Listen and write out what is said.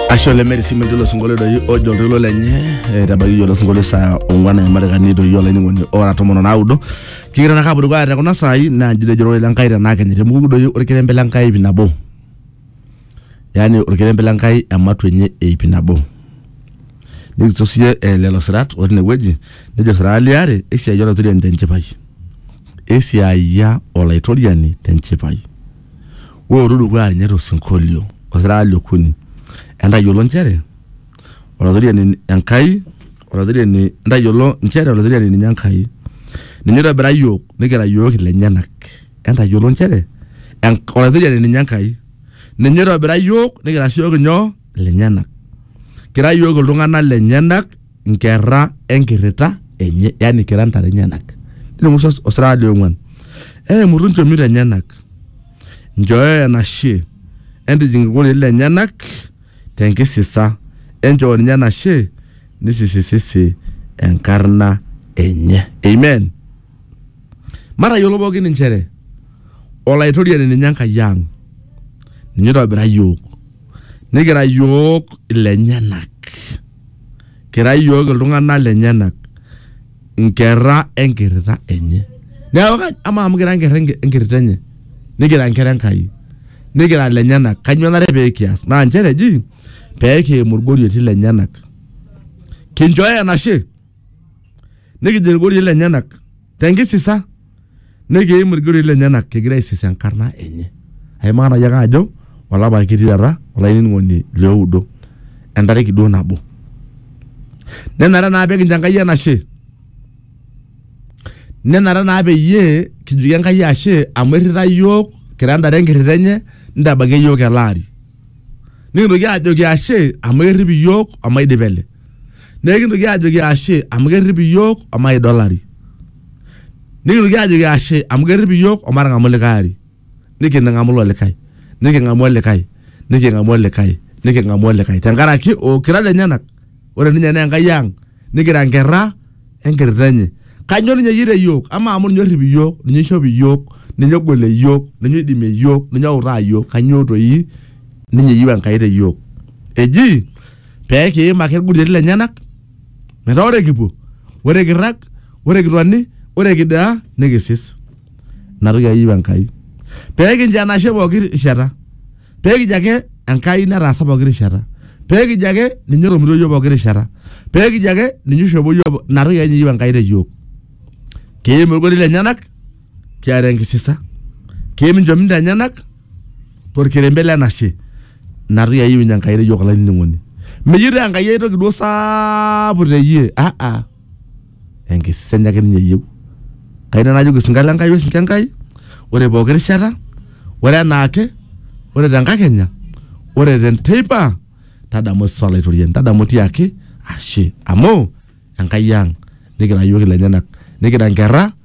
ashe ole meri sii metii olosinkolio doi ojo oltoilo lenye etabaki iyie olosinkolio saa ong'uan emarekani doi olainining'oni ora tomon o naudo kigira naa kapuo dukuya te kuna saai naa nji ejo ororei le Nkai tenaa kenye temuku doi orkerembe le Nkai iip nabo yaani orkerembe le Nkai ematua enye iip nabo nikijo siiyie eh, lelo sirat otii inewueji nejo siraa liare esiai olaitoriani tenchipai esiaia olaitoriani tenchipai Wootu dukuya ninye to sinkolio osiraka le okuni. Entayiolo nchere Olatoriani Enkai, Olatoriani, entayiolo nchere Olatoriani ninye Enkai. Ninye oitobira iyiook nikira iyiook ilenyenak. Entayiolo nchere Enk, Olatoriani ninye Enkai. Ninye oitobira iyiook nikira sii iyiook inyoo? Ilenyenak. Kira iyiook iltung'anak lenyenak. nkerra enkirrita enye yani kira ntare enyenak nitumusa osirata le ong'uan eimutu nchomito enyenak nchooyo enashe entijing irkurerin lenyenak tenkisisa enchoo ninye enashe nisisisisi enkarna enye amen matayiolo pookin inchere olaitoriani ninye enkai ang ninye oitobira yiok nikira yiok ilenyenak kira iyiook iltung'anak lenyenak inkerra enkirrita enye neeku ka- amaa amu kira inkerra enki- enkirrita enye nikira inkera Enkai nikira lenyenak kanyio enare pee kias naa nchere eji pee kiimu irgorioiti lenyenak kinchooyo enashe nikijing irgorioiti lenyenak tenkisisa. Nekeim ilgiroin lenyena kigira aisis enkarna enye. Aimaa nai ake ajo olapa kitii taata olainining'oni lioudo entariki duo nabo. Nenare naa pekincho Enkai enashe. Nenare naa peyie kijoki Enkai ashe amu errita iyiook kira ntare enkirrita enye nitabakia iyiook ele ari. Nikintoki ajoki ashe amu kerrip iyiook omaidipa ele. Nekintoki ajoki ashe amu kerrip iyiook omaida olari. nikinoki ajoki ashe amu kerrip iyiook omatang'amu likae ari niking'amu ilo likae niking'amu olikae niking'amu olikae niking'amu olikae tenkaraki okira lenyenak ore ninye naa Enkai ang nikira nkerra enkirrita enye kanyoo ninye eyieu te iyiook amaa amu ninye orrip iyiook ninye oishop iyiook ninye ogolie iyiook ninye oidimie iyiook ninye outaa iyiook kanyoo toi ninye eyieu Enkai te iyiook eji pekiim ake irkutitik lenyenak. Metaa ore kipuo, ore kirrag, ore kitoni, ore kidaa nikisis. Ina toki ake eyieu Enkai. Pee kincho enashe pooki rishata. Pee kijo ake Enkai netaasa pooki rishata. Pee kijo ake ninye otomitio iyiook pooki rishata. Pee kijo ake ninye oishopo iyiook. Ina toki ake ninye eyieu Enkai te yiook. Kiim ilgotii lenyenak kiata enkisisa. Kiim inchomito enyenak torkerembe le nashe. natu yaiu ninye Enkai teyiok olainining'oni. Meyieu taa Enkai ai toki duo saapuk teyie ah ah enkisenya ake ninye eyieu. Kayieu nanu najoki osinka le Nkai osinka Enkai ore pooki rishata, ore enaake, ore te nkakenya, ore te nteipa tadamu Yesus Olaitoriani, tadamu tiaki ashe amu Enkai ang' nikira iyiook ilenyenak, nikira nkerra.